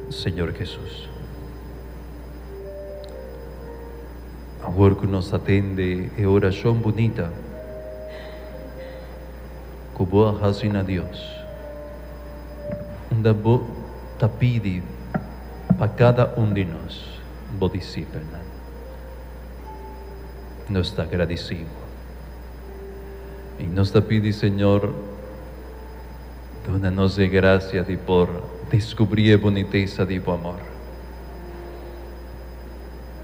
Señor Jesus. Awor cu nos a tende e oracion bunita cu Bo a haci na Dios, unda Bo ta pidi pa cada un di nos, Bo disipelnan, nos ta agradicibo y nos ta pidi, Señor, Duna nos e gracia di por descubri e bunitesa di bo amor.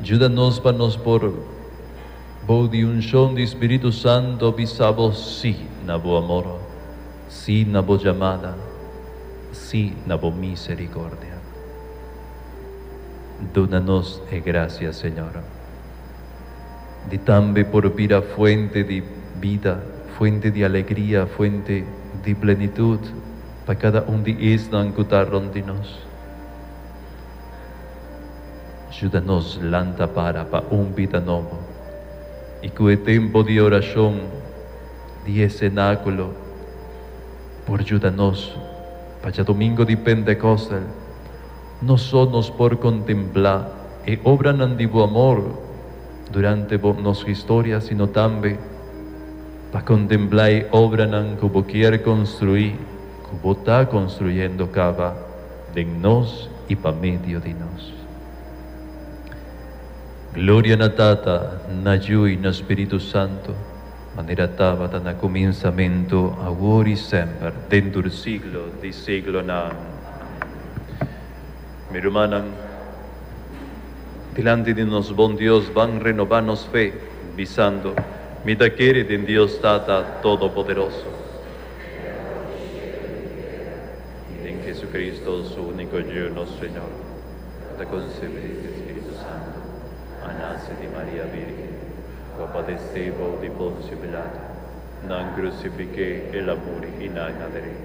Juda nos pa nos por, bou di uncion di Spiritu Santo, bisa bo si na bo amor, si na bo jamada, si na bo misericordia. Duna nos e gracia, Señor. di tambe por bira fuente di bida, fuente di alegria, fuente di plenitud pa kada un di esnan ku ta rònt di nos. Juda nos lanta para pa un bida nobo i ku e tempu di orashon di e senákulo por juda nos pa djadumingu di Pentekostel. No so nos por contempla e obranan di bo amor durante bo nos historia, sino tambe pa contempla e obranan cu bo kier construi, cu bo ta construyendo caba den nos y pa medio di nos. Gloria na Tata, na Yu y na Spiritu Santo. Manera tabata na kuminsamentu, awor i semper, den tur siglo di siglonan. Mi rumannan, dilanti di nos Bon Dios ban renobá nos fe, bisando, Mi ta kere den Dios Tata Todopoderoso, i den Jesucristo, Su úniko Ju, nos Señor, ku ta konsebí di Spiritu Santu, a nase di Maria Vírgen. Bo padesé bou di Poncio Pilato, nan krusifiké El a muri i nan a drei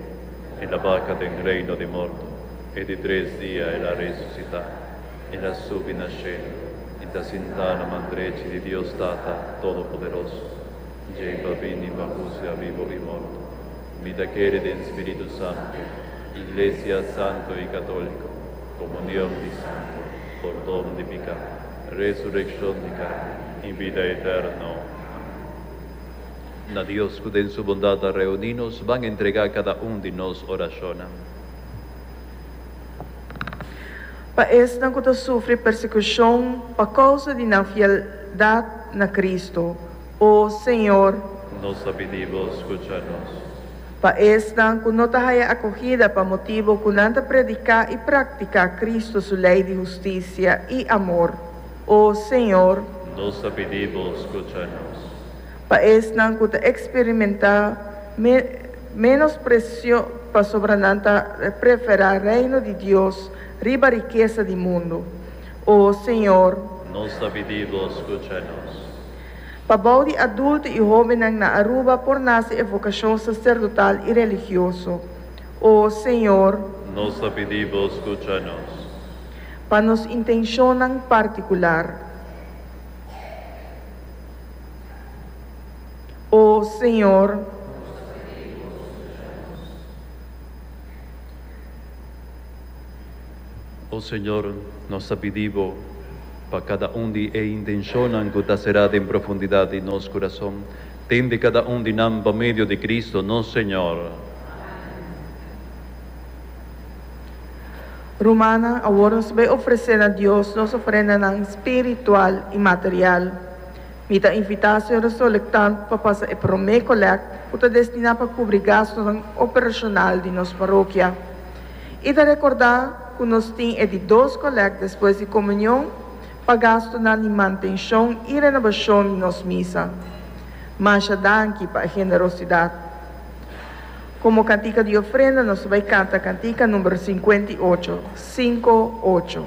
El a baka den reino di morto, i di tres dia El a resusitá, El a subi na shelu i ta sintá na man drechi di Dios Tata Todopoderoso, djei pa bini pa husga bibu i morto. Mi ta kere den Spiritu Santu, Iglesia santu i katóliko, komunion di santu, pordon di piká. Resureccion di carne y bida eterno. Na Dios cu den su bondad a reuni nos ban entrega cada un di nos oracionnan. Pa esnan cu ta sufri persecucion pa causa di nan fieldad na Cristo. O Señor. Nos a pidi Bo scucha nos. Pa esnan cu no ta haya acogida pa motibo cu nan ta predica y practica Cristo su ley di husticia y amor. O Señor. Nos a pidi Bo scucha nos. Pa esnan cu ta experimenta menosprecio pasobra nan ta prefera Reino di Dios riba rikesa di mundo. O Señor. Nos a pidi Bo scucha nos. Pa bou di adulto i hóbennan na Aruba por nase e vokashon saserdotal i religioso. O Señor. Nos ta pidi Bo skucha nos. Pa nos intenshonnan partikular. O Señor. Nos ta pidi Bo skucha nos. O Señor, nos ta pidi Bo pa kada un di e intenshonnan ku ta será den profundidad di nos kurason, tende kada un di nan pa medio di Kristu nos Señor. Rumannan, awor nos bai ofresé na Dios nos ofrendanan spiritual i material. Mi ta invitá señor Solektant pa pasa e promé kolèkt ku ta destiná pa kubri gastunan operacional di nos parokia. I ta rekordá ku nos tin e di dos kolèk despues di komunion pa gastunan di mantenshon i renobashon di nos misa. Masha danki pa e generosidat! Komo kantika di ofrenda nos ta bai kanta kantika number sinkuenta i ocho, sinku ocho.